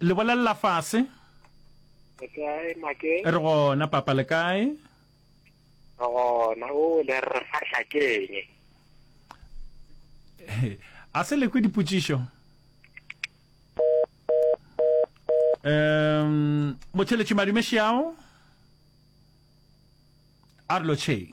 le bolelela fase re gona papa le kae gona o le re fahla keng a se lekwe dipotšišo um motheletši madume šiao a re lotšheng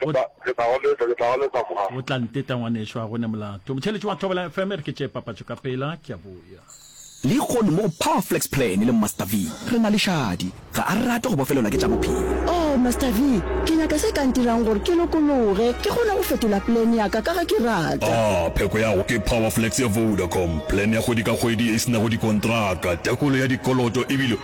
Ke tla, ke tla go leta, ke tla go leta mma. O tla nteta ngwanešu, ga go ne molato. Motšheletši wa Thobela FM, re ke tšee papatšo ka pela, ke a boya. Lehono mo go Power Flex Plan le Master V, re na le šadi. Ga a rate go bofelelwa ke tša bophelo. Oh, Master V, ke nyaka se ka ntirang gore ke lokologe, ke kgone go fetola plan ya ka, ka ge ke rata. Ah, pheko ya go ke Power Flex ya Vodacom. Plan ya kgwedi ka kgwedi e se nago dikontraka, tekolo ya dikoloto e bile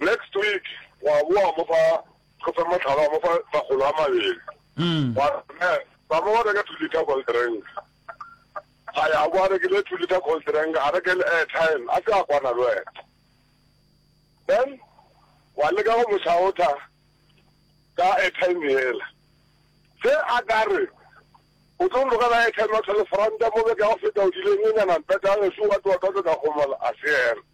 Next week wa boa mo fa go fe motlhala wa mo fa makgolo a mabedi wa ne ba mo reka two liter cold drink a ya bo a rekile two liter cold drink a reke le airtime a se a kwana le wena then wa leka go mo shaotha ka airtime yela se a ka re o tlo lokela airtime wa tlhole front mo beka go feta o dileng e nyana mpeta e se wa twa ka ka gomola a se yena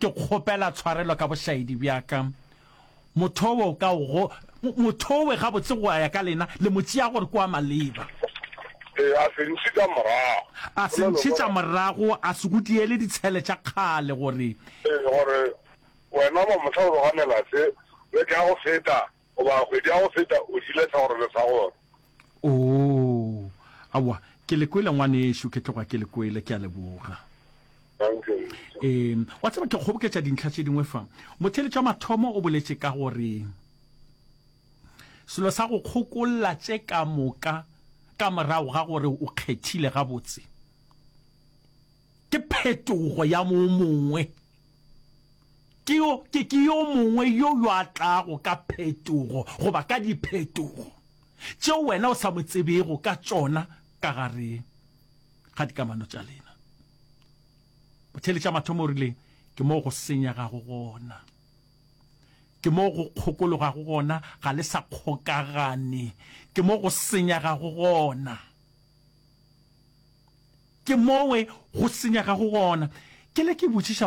Ke kgopela tshwarelo ka bošaedi bja ka. Mothowe o ka go, mothowe gabotse go a ya ka lena, le mo tšea gore ke wa maleba. Ee, a se ntšhetša morago. A se ntšhetša morago, a se go diele ditshele tša kgale gore. Ee, gore wena ba mohla o loganela se, le tla go feta. Goba kgwedi ya go feta o dile segorelo sa gore. Oo, aowa, ke le kwele ngwanešu, ke tloga ke le kwele, ke a leboga. Ee, wa tseba ke kgoboketša dintlha tše dingwe fa. Motheeletša wa mathomo o boletše ka gore selo sa go kgokolla tše ka moka ka morago ga gore o kgethile gabotse. Ke phetogo ya mo mongwe. Ke yo, ke, ke yo mongwe yo yo a tlago ka phetogo goba ka diphetogo tšeo wena o sa mo tsebego ka tšona ka gare ga dikamano tša lena. Bothele tša mathomo o rile, ke moo go senyegago gona. Ke moo go kgokologago gona, ga le sa kgokagane. Ke moo go senyegago gona. Ke mowe go senyega go gona. Ke le ke botšiša.